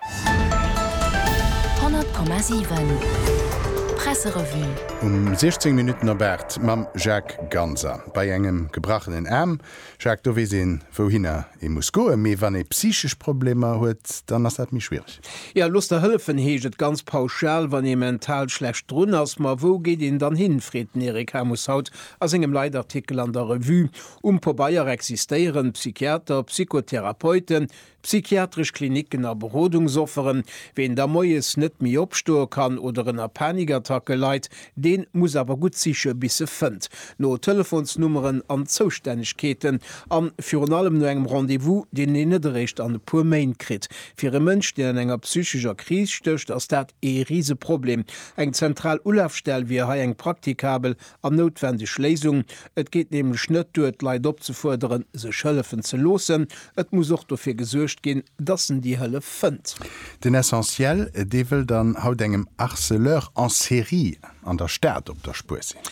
100,7 Presserevue Um 16 Minutten op 8 mam Jacques Ganser. Bei engem gebrachenen Aarm, Jacques, do weess een, wouhinner ee muss goen. Mee wann ee psychesch Problemer huet, dann ass dat méi schwiereg. Jo, looss der hëllefen, heescht et ganz pauschal, wann ee mental schlecht drun ass. Ma wou geet een dann hin? freet den Eric Hamus haut a sengem Leitartikel an der Revue. Um Pobeier existéieren d'Psychiater, Psychotherapeuten, Psychiatresch Klinicken a Berodungsofferen, Ween da moies net méi opstoe kann oder ënner Panikattacke leit, deen muss awer gutt siche bis e fënnt. No Telefonsnummeren an Zoustännegkeeten an virun allem no engem Rendez-vous, deen een net eréischt an e puer Méint kritt. Fir e Mënsch, deen an enger psychescher Kris stécht, ass dat ee Riseproblem. Eng zentral Ulafstell wier hei eng praktikabel An noutwendeg Léisung. Et geet nämlech net duer, d'Leit opzefuerderen, sech hëllefen ze loossen. Et muss och dofir gesuergt ginn, dass en déi Hëllef fënnt. Den Essentiel, dee wëll dann haut engem Harceleur en série an der Stad op der Spuer sinn.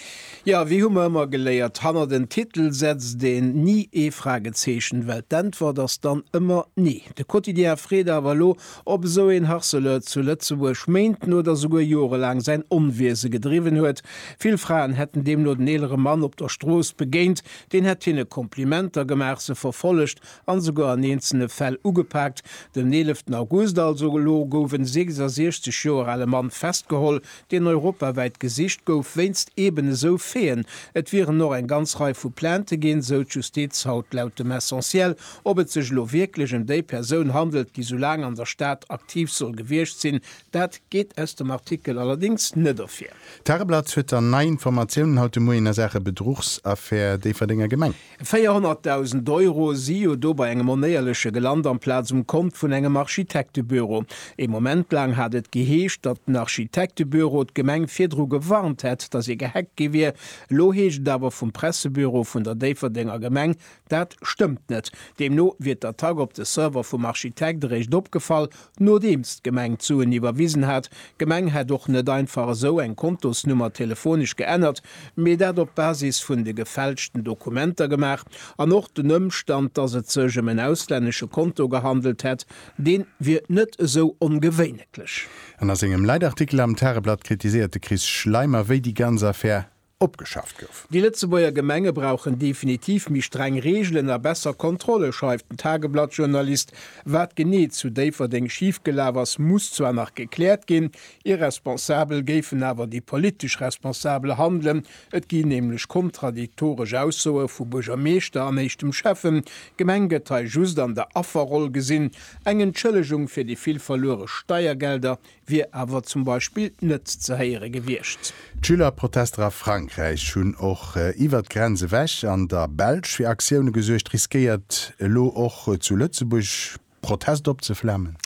Jo, wéi hu mer ëmmer geléiert, hannert en Titel setzt een ni ee Fragezeechen, well d'Äntwert ass dann ëmmer nee. De Quotidien freet awer elo, Ob esou een Harceleur zu Lëtzebuerg Méint n oder souguer Jore laang säin Onwiese gedriwwen huet? Vill Fraen hätten deemno den eelere Mann op der Strooss begéint. Deen hätt hinne Komplimenter gemaach, se verfollegt an esouguer an eenzelne Fäll ugepaakt. Den 11 August, also elo, gouf en 66 Joer ale Mann festgeholl, deen europawäit gesicht gouf wéinst eeben esou Faiten. Et wieren och eng ganz Rei vu Plainte ginn, esou d'Justiz haut laut dem Essentiel. Ob et sech elo wierklech ëm déi Persoun handelt, déi sou laang an der Stad aktiv soll gewiescht sinn, dat geet aus dem Artikel allerdéngs net ervir. D'Tageblatt huet dann nei Informatiounen haut de Moien a Saache Bedruchsaffär Déifferdenger Gemeng. 400.000 Euro si jo do bei engem Onéierleche gelant amplaz um Kont vun engem Architektebüro. Ee Moment laang hat et geheescht, datt den Architektebüro d'Gemeng virdru gewarnt hätt, datt ee gehackt gi wier. Elo heescht et awer vum Pressebüro vun der Déifferdenger Gemeng, Dat stëmmt net. Deemno wier d'Attack op de Server vum Architekt eréischt opgefall, nodeems d'Gemeng d'Suen iwwerwisen hat. D'Gemeng hätt och net einfach esou eng Kontosnummer telefonesch geännert, mee dat op Basis vun de gefälschten Dokumenter gemaach. An och den Ëmstand, dass et sech ëm en auslännesche Konto gehandelt hätt, dee wier net esou ongewéineklech. An a sengem Leitartikel am Tageblatt kritiséiert de Chris Schleimer, wéi déi ganz Affär opgeschaaft gouf. Déi Lëtzebuerger Gemenge brauchen definitiv méi streng Reegelen a besser Kontrolle, schreift den Tageblatt-Journalist. Wat genee zu Déifferdeng schif gelaf ass, muss zwar nach gekläert ginn. Irresponsabel géifen awer déi politesch Responsabel handelen. Et gi nämlech kontradiktoresch Aussoe vu Buergermeeschter an éischtem Schäffen. D'Gemeng gëtt hei just an der Afferroll gesinn. Eng Entschëllegung fir déi vill verluere Steiergelder wier awer zum Beispill net ze héiere gewiescht. D'Schülerprotester a Frankräich hunn och iwwert d'Grenz ewech an der Belsch fir Aktioune gesuergt. Riskéiert elo och zu Lëtzebuerg Protest opzeflamen?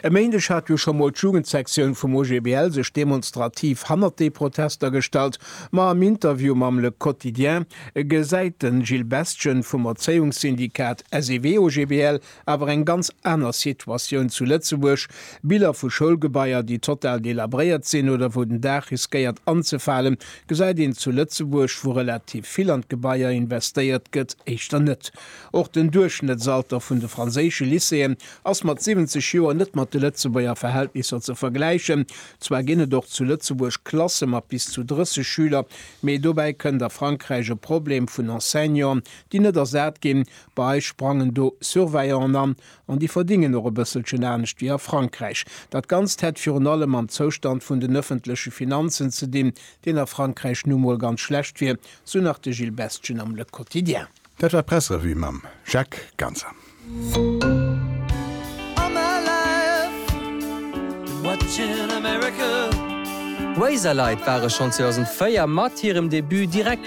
E Méindeg hat jo scho mol d'Jugendsektioun vum OGBL sech demonstrativ hannert déi Protester gestallt. Ma am Interview mam Le Quotidien gesäit de Gilles Bestgen vum Erzéiungssyndikat SEW-OGBL Awer eng ganz aner Situatioun zu Lëtzebuerg, Biller vu Schoulgebaier, déi total delabréiert sinn oder wou den Daach riskéiert anzefalen, gesäit een zu Lëtzebuerg, wou relativ vill an d'Gebaier investéiert gëtt, éischter net. Och den Duerchschnëttsalter vun de franséische Lycéeën ass mat 70 Joer net mat de Lëtzebuerger Verhältnisser ze vergläichen. Zwar ginn et och zu Lëtzebuerg Klasse mat bis zu 30 Schüler, mee dobäi kënnt a Frankräich e Problem vun Enseignanten, déi net ersat ginn, Bei eis sprangen do Surveillanten an, an déi verdingen och e bësselchen anescht wéi a Frankräich. Dat Ganzt hätt virun allem mam Zoustand vun den ëffentleche Finanzen ze dinn, deen a Frankräich nu emol ganz schlecht wier, sou nach de Gilles Bestgen am Le Quotidien. Dat war d'Pressrevue mam Jacques Ganser. D'Razorlight ware schonn 2004 mat hirem Debut direkt.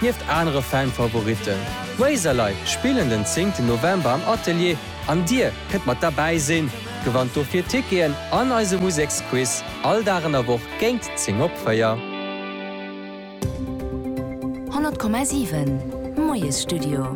Nieft anere Fanfavoritten, Razorlight spillen den 10 ten November am Atelier an dir kënnt mat derbäi sinn. Gewannt dofir Ticketen an eise Museksquiz all Dag an der Woch géint 10 op 4. 100,7 Moiesstudio.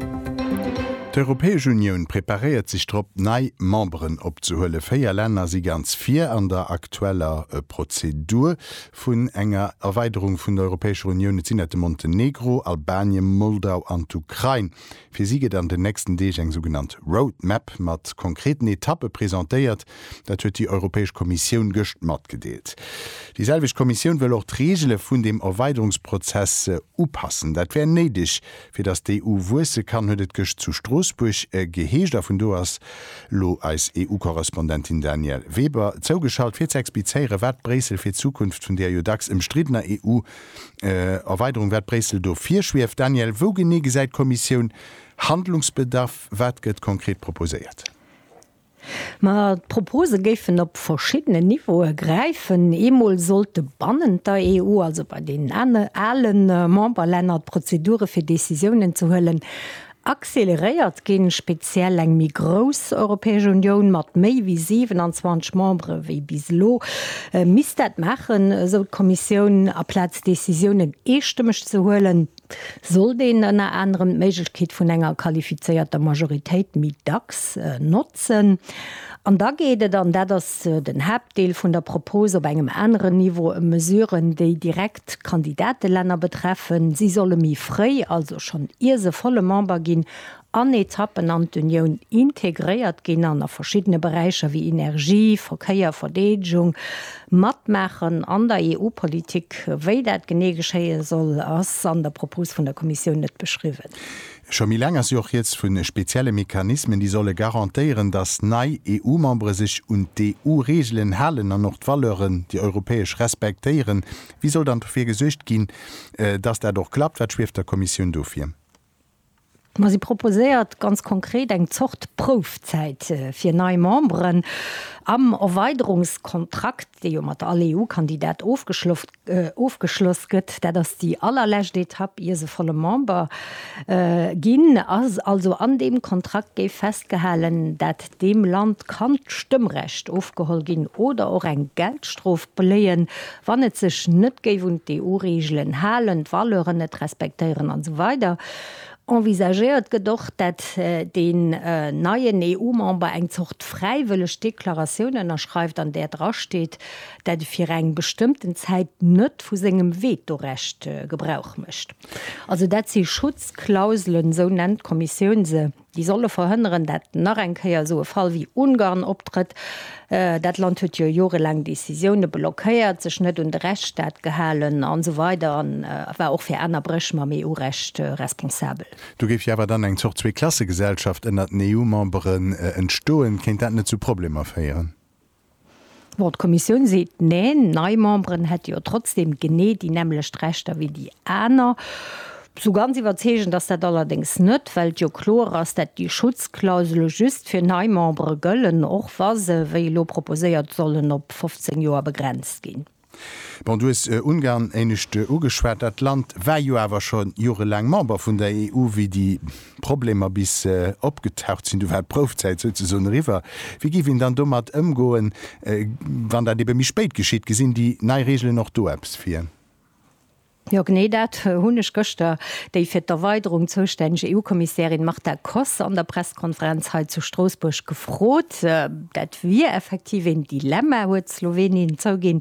D'Europäesch Unioun preparéiert sech drop, nei Memberen opzehuelen. Véier Länner si ganz vir an der aktueller Prozedur. vun enger Erweiderung vun der Europäescher Unioun. Et sinn dat de Montenegro, Albanien, Moldau an d'Ukrain. Fir si gëtt an den nächsten Deeg eng sougenannt Road Map mat konkreten Etappe presentéiert. Dat huet déi Europäesch Kommissioun gëscht matgedeelt. Déi selwecht Kommissioun wëll och d'Reegele vun dem Erweiderungsprozess upassen. Dat wär néideg, Fir datt d'EU wuesse kann, huet et gëscht zu Stroossbuerg geheescht a vun do ass elo eis EU-Korrespondentin Danièle Weber zougeschalt, fir ze explizéieren, wat Bréissel fir d'Zukunft vun där jo dacks ëmstriddener EU-Erweiderung, wat Bréissel do virschwieft. Danièle, wou genee gesäit d'Kommissioun Handlungsbedarf? Wat gëtt konkret proposéiert? Ma d'Propose géifen op verschiddenen Niveaue gräifen. Eemol sollte bannent der EU, also bei deenen ale Memberlänner, d'Prozedure fir Decisiounen ze huelen acceleréiert ginn. Speziell eng méi grouss Europäesch Unioun mat méi wéi 27 Membere wéi bis elo misst dat maachen, esou d'Kommissioun, aplaz Decisiounen eestëmmeg ze huelen. Sollt een ënner anerem d'Méiglechkeet vun enger qualifizéierter Majoritéit méi dacks notzen. An da geet et, an dat ass den Haaptdeel vun der Propos, op engem aneren Niveau ëm Mesuren, déi direkt Kandidatelänner betreffen. Si solle méi fréi, also schonn ier se volle Member ginn, an Etappen an d'Unioun integréiert ginn an a verschiddene Beräicher wéi Energie, Verkéier, Verdeedegung matmaachen an der EU-Politik. Wéi dat genee geschéie soll, ass an der Propos vun der Kommissioun net beschriwwen. Scho méi laang ass jo och Rieds vu spezielle Mechanismen, déi solle garantéieren, datt nei EU-Membere sech un d'EU-Reegelen halen an och d'Valeuren, déi europäesch, respektéieren. Wéi soll dann dofir gesuergt ginn, datt dat och klappt? Wat schwieft der Kommissioun do vir? Ma si proposéiert ganz konkret eng Zort Proufzäit fir nei Memberen. Am Erweiderungskontrakt, dee jo mat all EU-Kandidat ofgeschloss gëtt, dat ass déi allerlescht Etapp ier se volle Member ginn, ass also an deem Kontrakt géif festgehalen, dat Deem Land kann d'Stëmmrecht ofgeholl ginn oder och eng Geldstrof bléien, wann et sech net géif un d'EU-Reegelen halen, d'Valeuren net respektéieren an esou weider Envisagéiert gëtt och, dat deen neien EU-Member eng Zort fräiwëlleg Deklaratioun ënnerschreift, an där drasteet, dat e fir eng bestëmmten Zäit net vu sengem Vetorecht Gebrauch mécht. Also dat si Schutzklauselen, esou nennt d'Kommissioun se. déi solle verhënneren, dat nach eng Kéier esou e Fall wéi Ungarn optrëtt, dat Land huet jo jorelaang Décisioune blockéiert, sech net un de Rechtsstaat gehalen an esou weider an war och fir aner Bréch mam EU-Recht responsabel. Do géif jo awer dann eng Zort Zwee-Klasse-Gesellschaft ënnert den EU-Memberen entstoen. Kéint dat net zu Problemer féieren? Bon, d'Kommissioun seet Neen, nei Memberen hätte jo trotzdeem genee déi nämmlecht Rechter wéi déi aner. Sou ganz iwwerzeegend ass dat allerdéngs net, well et jo kloer ass, dat déi Schutzklausele just fir nei Membere gëllen, och wa se, wéi elo proposéiert, sollen op 15 Joer begrenzt ginn. Bon, du hues Ungarn éinescht ugeschwat. Dat Land war jo awer scho jorelaang Member vun der EU, wéi déi Problemer bis opgetaucht sinn. Do war d'Proufzäit souzesoen eriwwer. Wéi géif een dann domat ëmgoen, wann dat ebe méi spéit geschitt? Gesinn déi nei Reegelen och do eppes vir? Jo genee dat hunn ech gëschter déi fir d'Erweiderung zoustänneg EU-Kommissärin Marta Koss an der Presskonferenz hei zu Stroossbuerg gefrot. Dat wier effektiv een Dilemma, huet d'Slowenien zouginn.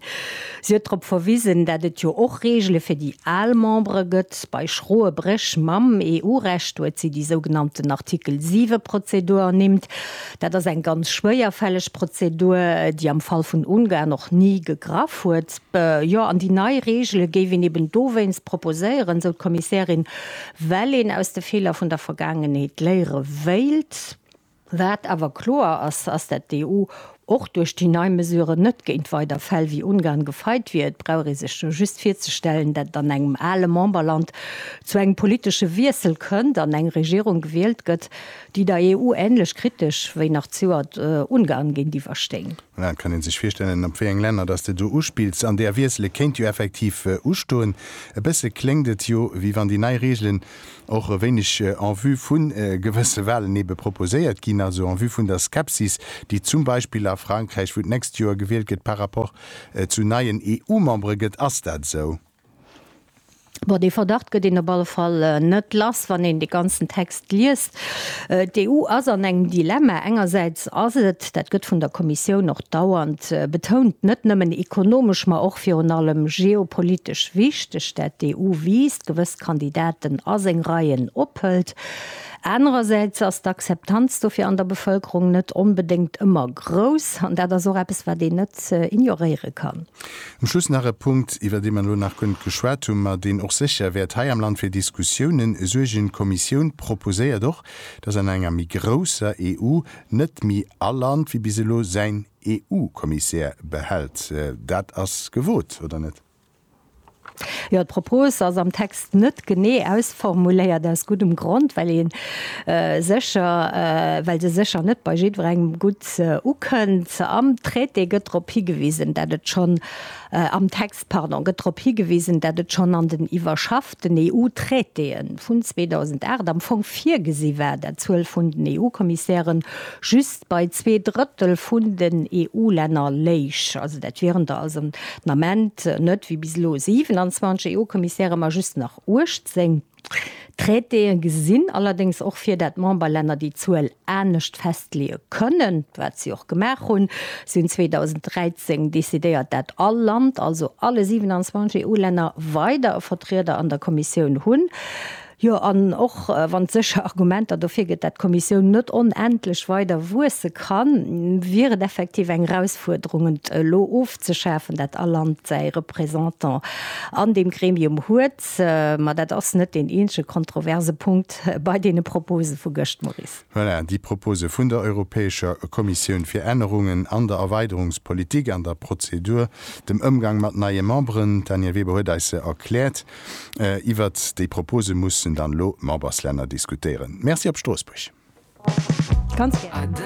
Si huet drop verwisen, dat et jo och Reegele fir déi al Membere gëtt. Bei schroe Bréch mam EU-Recht huet si déi sougenannten Artikel 7 Prozedur ernimmt. Dat ass eng ganz schwéierfälleg Prozedur, déi am Fall vun Ungarn och ni gegraff huet. Jo, an déi nei Reegele géif een eben dowéinst proposéieren, sou d'Kommissärin, well een aus de Feeler vun der Vergaangenheet léiere wéilt. Wat awer kloer ass, ass dat d'EU och duerch déi nei Mesuren net géint weider Fäll wéi Ungarn gefeit wier. Et brauch ee sech jo just virzestellen, datt et an engem ale Memberland zu engem politesche Wiessel kënnt an eng Regierung gewielt gëtt, déi der EU änlech kritesch wéi nach d'Seuert Ungarn géintiwwer stéing. Voilà, et kann ee sech virstellen, op wéi eng Länner dass s de do uspills. An där Wiessele kéint jo effektiv ustoen. E bësse kléngt et jo, wéi wann déi nei Reegelen och e wéineg en vue vu gewësse Walen ebe proposéiert ginn, also en vue vun der Skepsis, déi zum Beispill a Frankräich, wou d'nächst Joer gewielt gëtt, par rapport zu neien EU-Membere gëtt. Ass dat esou? Bon, dee Verdacht gëtt een op alle Fall net lass, wann een de ganzen Text liest. D'EU ass an engem Dilemma. Engersäits ass et, dat gëtt vun der Kommissioun och dauernd betount, net nëmmen ekonomesch, ma och virun allem geopolitesch wichteg, dat d'EU wiisst, gewëss Kandidaten a seng Reien ophëlt. Anerersäits ass d'Akzeptanz dofir an der Bevëlkerung net onbedéngt ëmmer grouss. An dat ass och eppes, wat een net ignoréiere kann. Um Schluss nach e Punkt, iwwer dee mer elo nach guer net geschwat hunn, ma deen och sécher wäert hei am Land fir Diskussiounen suergen, D'Kommissioun proposéiert och, datt an enger méi grousser EU net méi all Land wéi bis elo säin EU-Kommissär behält. Dat ass gewot, oder net? Jo, d'Propos ass am Text. net genee ausformuléiert, aus guddem Grond, well ee sécher, well se sécher net bei jiddwerengem gutt ukënnt. Am Traité gëtt drop higewisen, dat et schonn, am Text, pardon, gëtt drop higewisen, dat et schonn an den iwwerschafften EU-Traitéë vun 2008 am Fong virgesi war, dat d'Zuel vun den EU-Kommissäre just Bei zwee Drëttel vun den EU-Länner léich also dat wieren der also den Ament net wéi bis elo 27 EU-Kommissäre, ma just nach 18. D'Traitéë gesinn allerdéngs och vir, dat d'Memberlänner déi Zuel anescht festleeë kënnen, wat si och gemaach hunn. Si hunn 2013 decidéiert, dat all Land, also alle 27 EU-Länner, weider e Vertrieder an der Kommissioun hunn. Jo, an och wann et sécher Argumenter dofir gëtt, dat d'Kommissioun net onendlech weider wuesse kann, wier et effektiv eng Erausfuerderung, et elo ofzeschafen, dat all Land säi Représentant an deem Gremium huet. Mä dat ass net deen eenzege kontroverse Punkt bei deene Propose vu gëscht, Maurice. Voilà, déi Propose vun der Europäescher Kommissioun fir Ännerungen an der Erweiderungspolitik, an der Prozedur, dem Ëmgang mat neie Memberen, d'Danièle Weber huet eis se erkläert. Iwwert déi Propose mussen dann elo d'Memberslänner diskutéieren. Merci op Stroossbuerg. Ganz gär.